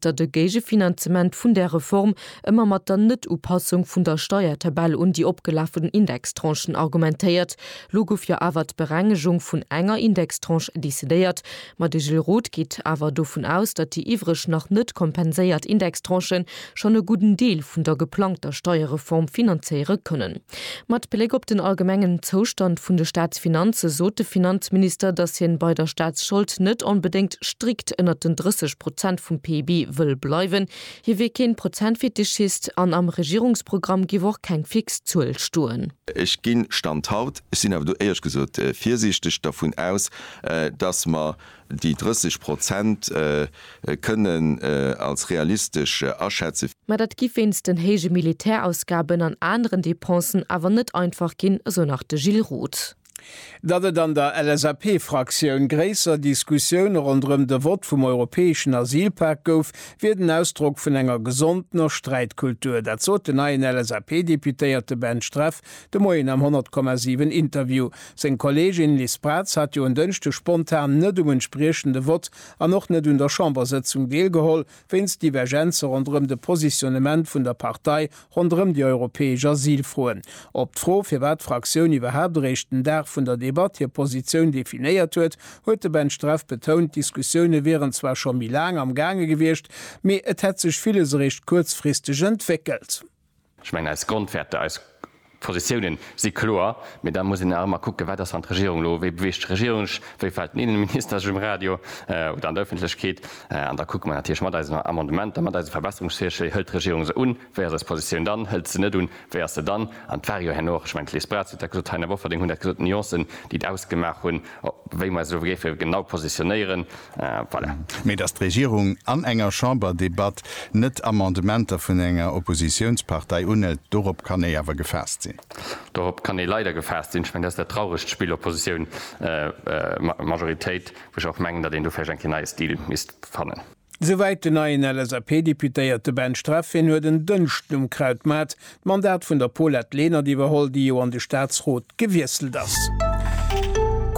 datt e Géigefinanzement vun där Reform ëmmer mat der Net-Upassung vun der Steiertabell un déi opgelafen Indextranchen argumentéiert. Lo gouf jo awer d'Berengegung vun enger Indextranche decidéiert. Ma de Gilles Roth geet awer dovun aus, datt déi iwwreg nach net kompenséiert Indextranchen schonn e gudden Deel vun der geplangter Steierreform finanzéiere kënnen. Mat Bléck op den allgemengen Zoustand vun de Staatsfinanze sot de Finanzminister, datt hien bei der Staatsschold net onbedéngt strikt ënnert den 30 Prozent vum PIB wëll bleiwen. Hie wier keen Prozentfetischist an am Regierungsprogramm géif och keng fix Zuel stoen. Ech ginn, Stand haut, ech sinn awer do éiersch gesot virsiichteg, dervun aus, datt mer Déi 30 Prozent kënnen als realistesch aschätzen. Mä dat giff wéinst den héije Militärausgaben an aneren Dépensen awer net einfach ginn, esou nach de Gilles Roth. Datt et an der LSAP-Fraktioun gréisser Diskussioune ronderëm de Vott vum europäeschen Asylpak gouf, wier den Ausdrock vun enger gesondener Sträitkultur. Dat sot den neien LSAP-Deputéierte Ben Streff De Moien am 100,7 Interview. Seng Kolleegin Liz Braz hat jo en Dënschde spontan net um entspriechende Vott an och net un der Chambersëtzung deelgeholl, wéinst Divergenze ronderëm de Positionnement vun der Partei ronderëm déi europäesch Asylfroen. Op d'Fro, firwat d'Fraktioun iwwerhaapt eréischt den Dag vun der Debatt hir Positioun definéiert huet, huet de Ben Streff betount, d'Diskussioune wieren zwar scho méi laang am gaange gewiescht, mee et hätt sech villes eréischt kuerzfristeg entwéckelt. Ech mengen, eis Grondwäerter, eis Positiounen si kloer. Mee da muss een nach ëmmer kucken, wat ass, wann d'Regierung elo, wéi beweegt d'Regierung sech, wéi fält den Innenminister sech um Radio oder an der Öffentlechkeet? An da kucke mer natierlech mat eisen Amendementer, mat eise Verbesserungsvirschléi, hëlt d'Regierung se un, wéi ass eis Positioun dann, hëlt se net un, wéi ass se dann? An et war jo herno och, ech mengen, d'Liz Braz huet dat gesot, d'Taina Bofferding hunn dat gesot, d'Nuancen, déi et ausgemaach hunn, wéi mer eis elo géife genau positionéieren. Voilà. Mee datt d'Regierung an enger Chamberdebatt net Amendementer vun enger Oppositiounspartei unhëlt, dorop kann ee awer gefaasst sinn. Dorop kann ee leider gefaasst sinn. Ech mengen, dat ass dat trauregt Spill Oppositioun, Majoritéit, wou ech och mengen, datt een do vläicht eng Kéier neie Stil misst fannen. Souwäit den neien LSAP-Deputéierte Ben Streff. Hien huet en Dënschden um Krautmaart D'Mandat vun der Paulette Lenert iwwerholl, déi jo an de Staatsrot gewiesselt ass.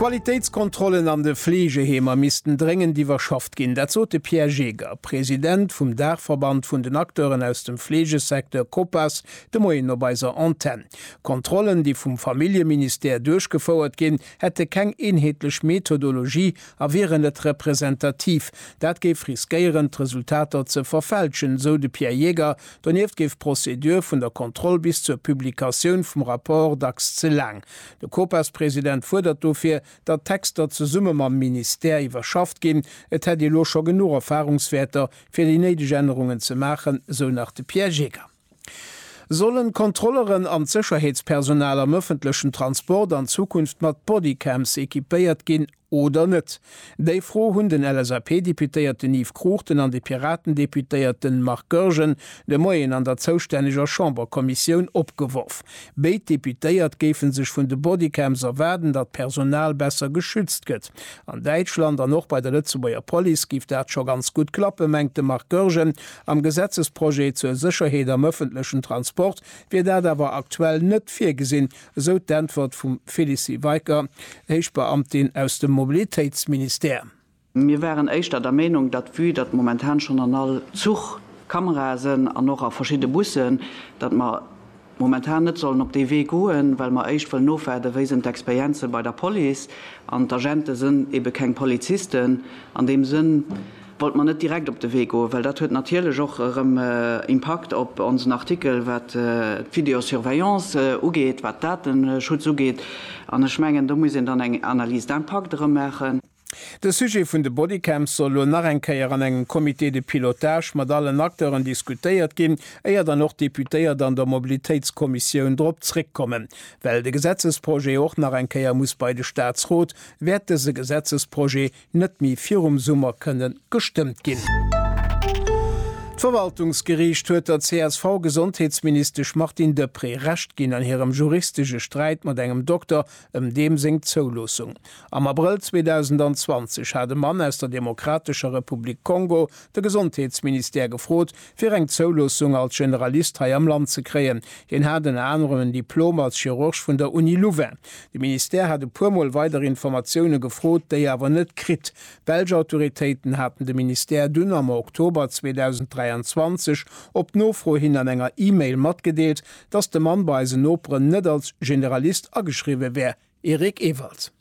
D'Qualitéitskontrollen an de Fleegeheemer missten dréngend iwwerschafft ginn. Dat sot de Pierre Jeger, President vum Daachverband vun den Acteuren aus dem Fleegesecteur Copas, de Moien op eiser Antenn. D'Kontrollen, déi vum Familljeministère duerchgefouert ginn, hätte keng eenheetlech Methodologie a wieren net representativ. Dat géif riskéieren, d'Resultater ze verfälschen, sou de Pierre Jeger, Donieft géif d'Prozedur vun der Kontroll bis zur Publikatioun vum Rapport dacks ze laang. De COPAS-President fuerdert dofir, datt d'Texter zesumme mam Ministère iwwerschafft ginn. Et hätt ee lo scho genuch Erfarungswäerter, fir déi néideg Ännerungen ze maachen, sou nach de Pierre Gégger. Sollen d'Kontrolleren an d'Sécherheetspersonal am ëffentlechen Transport an Zukunft mat Bodycams equipéiert ginn? Oder net? Déi Fro hunn den LSAP-Deputéierten Yves Cruchten an de Piraten-Deputéierten Marc Goergen de Moien an der zoustänneger Chamberkommissioun opgeworf. Béid Deputéiert géife sech vun de Bodycams erwaarden, datt d'Personal besser geschützt gëtt. An Däitschland an och bei der Lëtzebuerger Police géif dat scho ganz gutt klappen, mengt de Marc Goergen. Am Gesetzesprojet zur Sécherheet am ëffentlechen Transport wier dat awer aktuell net virgesinn, esou d'Äntwert vum Félicie Weicker, Héichbeamtin aus dem Mobilitéitsministère. Mir waren éischter der Meenung, datt vue datt momentan schonn an all Zuch Kamerae sënn an och a verschidde Bussen, datt mer momentan net sollen op dee Wee goen, well mer éischt wëllen ofwaarden, wéi sinn d'Experienze bei der Police. An d'Agente sënn ebe keng Polizisten an deem Sënn. wollt mer net direkt op de Wee goen, well dat huet natierlech och erëm Impakt op onsen Artikel, wat d'Videosurveillance ugeet, wat Dateschutz ugeet. An ech mengen, do muss een dann eng Analyse d'impact erëm maachen. De Sujet vun de Bodycams soll elo nach eng Kéier an engem Comité de pilotage mat allen Acteuren diskutéiert ginn, éier dann och d'Deputéiert an der Mobilitéitskommissioun drop zréckkommen. Well de Gesetzesprojet och nach eng Kéier muss bei de Statsrot, wäert dëse Gesetzesprojet net méi virum Summer kënnen gestëmmt ginn. D'Verwaltungsgeriicht huet der CSV-Gesondheetsministesch Martine Deprez Recht ginn an hirem juristesche Sträit mat engem Dokter ëm deem seng Zouloossung. Am Abrëll 2020 hat e Mann aus der Demokratescher Republik Kongo de Gesondheetsministère gefrot, fir eng Zouloossung als Generalist hei am Land ze kréien. Hien hat ënner anerem en Diplom als Chirurg vun der Uni Louvain. De Ministère hat e puer Mol weider Informatioune gefrot, déi awer net kritt. D'belsch Autoritéiten haten de Ministère dunn am Oktober 2023 op Nofro hin an enger E-Mail matgedeelt, dass de Mann bei eisen Noperen net als Generalist ageschriwwe wär. Eric Ewald.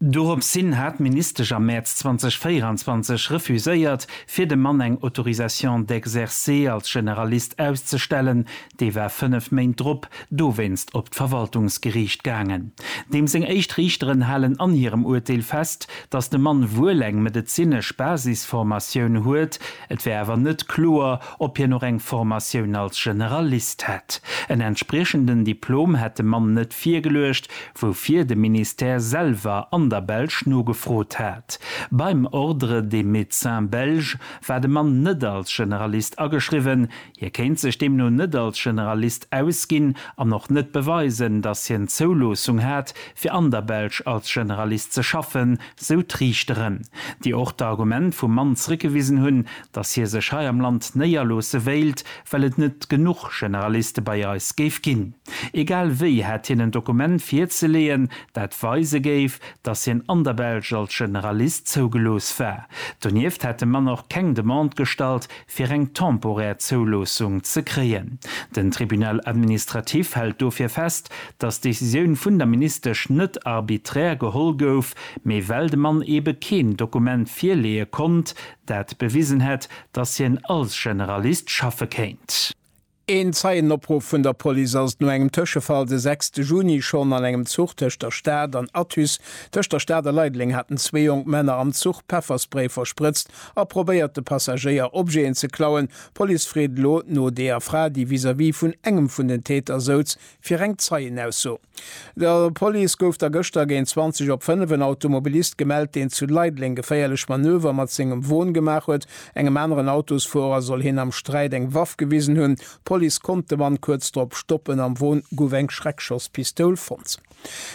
Doropshin hat d'Ministesch am Mäerz 2024 refuséiert, fir dem Mann eng Autorisation d'exercer als Generalist auszestellen. Dee war fënnef Méint drop dowéinst op d'Verwaltungsgeriicht gaangen. Deem seng éischt Riichteren halen an hirem Urteel fest, datt de Mann wuel eng medezinesch Basisformatioun huet, et wär awer net kloer, ob hien och eng Formatioun als Generalist hätt. En entspriechenden Diplom hätt de Mann net virgeluecht, woufir de Ministère selwer an der Belsch nogefrot hat. Beim Ordre des Médecins Belges war de Mann net als Generalist ageschriwwen, hie kéint sech deemno net als Generalist ausginn an och net beweisen, datt hien d'Zouloossung hat, fir an der Belsch als Generalist ze schaffen, sou d'Riichteren, déi och d'Argument vum Mann zréckgewisen hunn, datt hie sech hei am Land néierloosse wéilt, well et net genuch Generaliste bei eis géif ginn. Egal wéi hätt hien en Dokument virzeleeën, dat weise géif, datt hien an der Belsch als Generalist zougelooss war. Donieft hätt de Mann och keng Demande gestallt, fir eng temporär Zouloossung ze kréien. Den Tribunal administratif hält dofir fest, datt d'Decisioun vun der Ministesch net arbiträr geholl gouf, mee well de Mann eebe keen Dokument virleeë konnt, dat bewisen hätt, datt hien als Generalist schaffe kéint. Een Zeienopruff vun der Police ass no engem Tëschefall de 6 Juni schonn an engem Zuch tëscht der Stad an Athus. Tëscht der Stad a Leideleng haten zwee jonk Männer am Zuch Pefferspray versprëtzt a probéiert, de Passagéier Objeten ze klauen. D'Police freet elo no deeër Fra, déi vis-à-vis vun engem vun den Täter souz, fir eng Zeienausso. Der Police gouf da gëschter géint 20 op 5 en Automobilist gemellt, deen zu Leideleng geféierlech Manöver mat sengem Won gemaach huet. Engem aneren Autosfuerer soll hien am Sträit eng Waff gewisen hunn. D'Police konnt de Mann kuerz drop stoppen. Am Won gouf eng Schreckschosspistoul fonnt.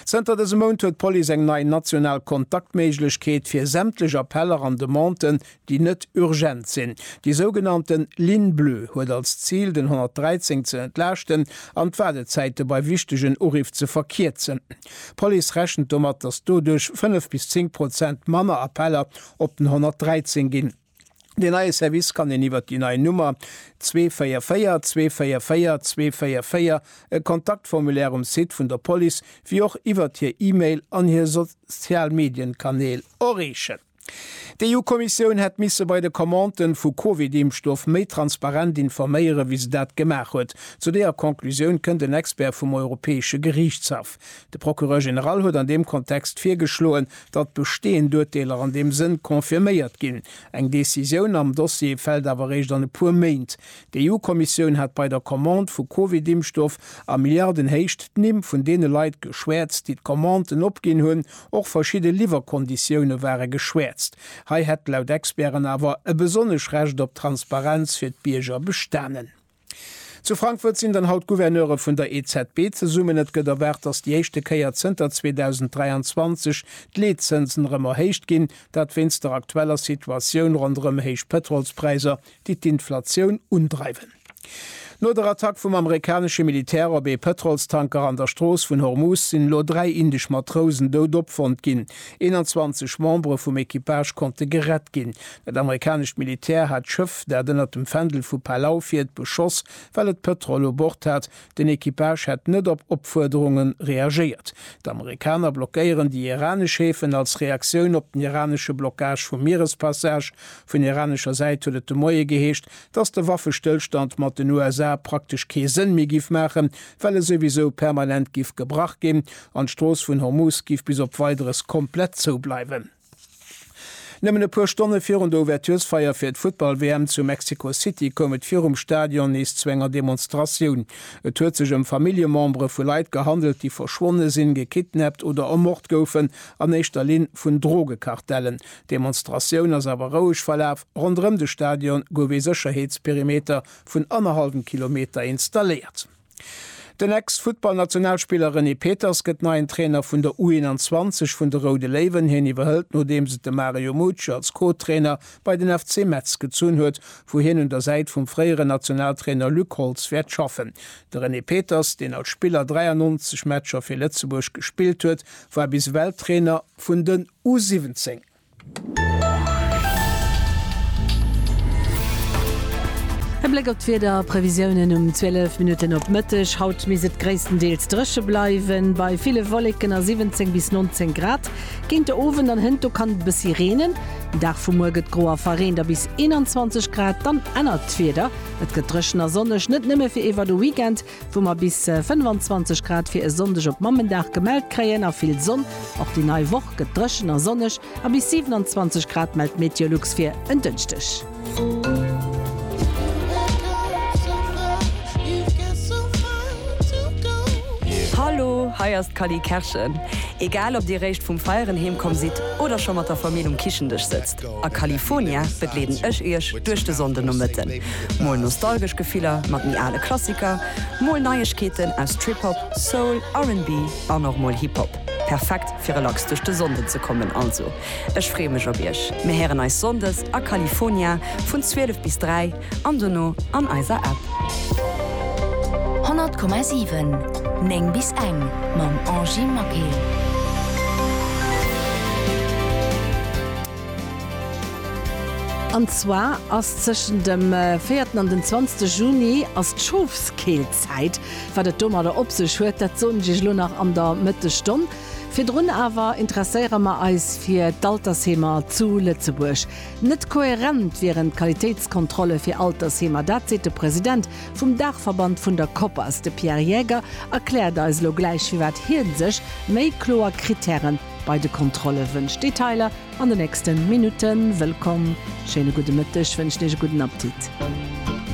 Zënter dësem Mount huet d'Police eng nei national Kontaktméiglechkeet fir sämtlech Appeller an Demanden, déi net urgent sinn. Déi sougenannte Ligne bleue huet als Zil, den 113 ze entlaaschten an d'Waardezäite bei wichtegen Uriff ze verkierzen. D'Police rechent domat, datt doduerch 5 bis 10 Prozent manner Appeller op den 113 ginn. Deen neie Service kann een iwwer déi nei Nummer 244 244 244, e Kontaktformulaire um Site vun der Police, wéi och iwwert hir E-Mail an hir Sozialmedienkanäl erreechen. D'EU-Kommissioun hätt misse bei de Commanden vu Covid-Impfstoff méi transparent informéieren, wéi se dat gemaach huet. Zu deeër Conclusioun kënnt en Expert vum Europäesche Geriichtshaff. De Procureur général huet an deem Kontext virgeschloen, datt besteeënd Urteeler an deem Sënn confirméiert ginn. Eng Decisioun am Dossier fält awer eréischt an e puer Méint. D'EU-Kommissioun hat bei der Commande vu Covid-Impfstoff a Milliardenhéicht d'Nimm vun deene Leit geschwäerzt, déi d'Commanden opginn hunn. Och verschidde Liwwerkonditioune ware geschwäerzt. Hei hätt laut Experten awer e besonnesch Recht op Transparenz fir d'Bierger bestanen. Zu Frankfurt sinn dann haut d'Gouverneure vun der EZB zesummen. Et gëtt erwaart, datt déi éischte Kéier zënter 2023 d'Leetzënsen erëm erhéicht ginn. Dat wéinst der aktueller Situatioun ronderëm héich Pëtrolspräisser, déi d'Inflatioun undreiwen. No der Attack vum amerikanesche Militär op ee Pëtrolstanker an der Strooss vun Hormuz sinn elo dräi indesch Matrousen dout opfonnt ginn. 21 Membere vum Equipage konnte gerett ginn. Dat amerikanescht Militär hat d'Schëff, dat ënnert dem Fändel vu Palau fiert, beschoss, well et Pëtrol u Bord hat, Den Equipage hätt net op Opfuerderunge reagéiert. D'Amerikaner blockéieren déi iranesch Häfen als Reaktioun op den iranesche Blockage vum Mierespassage. Vun iranescher Säit huet et de Moie geheescht, dass de Waffestëllstand mat den USA praktesch kee Sënn méi giff maachen, well e souwisou permanent giff gebrach ginn an d'Strooss vun Hormuz giff bis op Weideres komplett zoubleiwen. Nëmmen e puer Stonne virun der Ouverturesfeier fir d'Futtball-WM zu Mexico City koum et virum Stadion nees zu enger Demonstratioun. Et huet sech ëm Familljemembere vu Leit gehandelt, déi verschwonne sinn, gekidnappt oder ermort goufen, an éischter Linn vun Drogekartellen. D'Demonstratioun ass awer roueg verlaf. Ronderëm de Stadion gouf ee Sécherheetsperimeter vun annerhallwem Kilometer installéiert. Den Ex-Futtballnationalspiller René Peters gëtt neien Trainer vun der U21 vun de Roude Léiwen. Hien iwwerhëlt nodeems et de Mario Mucci als Co-Trainer bei den FC Metz gezunn huet, wou hien un der Säit vum fréieren Nationaltrainer Luc Holtz wäert schaffen. De René Peters, deen als Spiller 93 Matcher fir Lëtzebuerg gespillt huet, war bis ewell Trainer vun den U17. E Bléck op d'Wieder, Previsiounen um 12 Minutten op Mëtteg, Haut misst et gréisstendeels dréche bleiwen, bei ville Wolleken a 17 bis 19 Grad. Géint de Owend an hënto kann et e bëssi reenen. Den Dag vu muer gëtt gro a verreent a bis 21 Grad. Dann ännert d'Wieder, et gëtt dréchen a sonneg, net nëmme fir iwwert de Weekend. wou mer bis 25 Grad fir e Sonndeg op Mammendag gemellt kréien a vill Sonn. Och déi nei Woch gëtt dréchen a sonneg a bis 27 Grad mellt Meteolux fir en Dënschdeg. Hallo, hei ass d'Cally Kerschen. Egal ob dir réischt vum Feieren heemkomm sidd oder scho mat der Famill um Kichendësch sëtzt. A California begleeden ech iech duerch de Sonndenomëtten. Mol nostalgesch Gefiller mat méi ale Klassiker, mol Neiegkeeten aus Trip-Hop, Soul, RnB an och mol Hip-Hop. Perfekt fir relax duerch de Sonnden ze kommen. Also ech freeë mech op iech. Mir héieren eis Sonndes a California vun 12 bis 3. an dono an eiser App. 100,7 9 bis eng mam Angie Maquet. An zwar ass tëschent dem véierten an den zwanzte Juni ass d'Schofskeelzäit. Wat et domadder op sech huet, dat soen ech iech elo nach an der Mëttesstonn. Virdrun awer interesséiere mer eis fir d'Altersheemer zu Lëtzebuerg. Net koherent wieren d'Qualitéitskontrolle fir Altersheemer, dat seet de President vum Daachverband vun der Koppers. De Pierre Jäger erkläert eis elo gläich, firwat hie sech méi kloer Krittäre bei de Kontrolle wënscht. Detailer an den nächste Minutten. Wëllkomm, schéine gudde Mëtteg, wënschen Iech e gudden Aptit.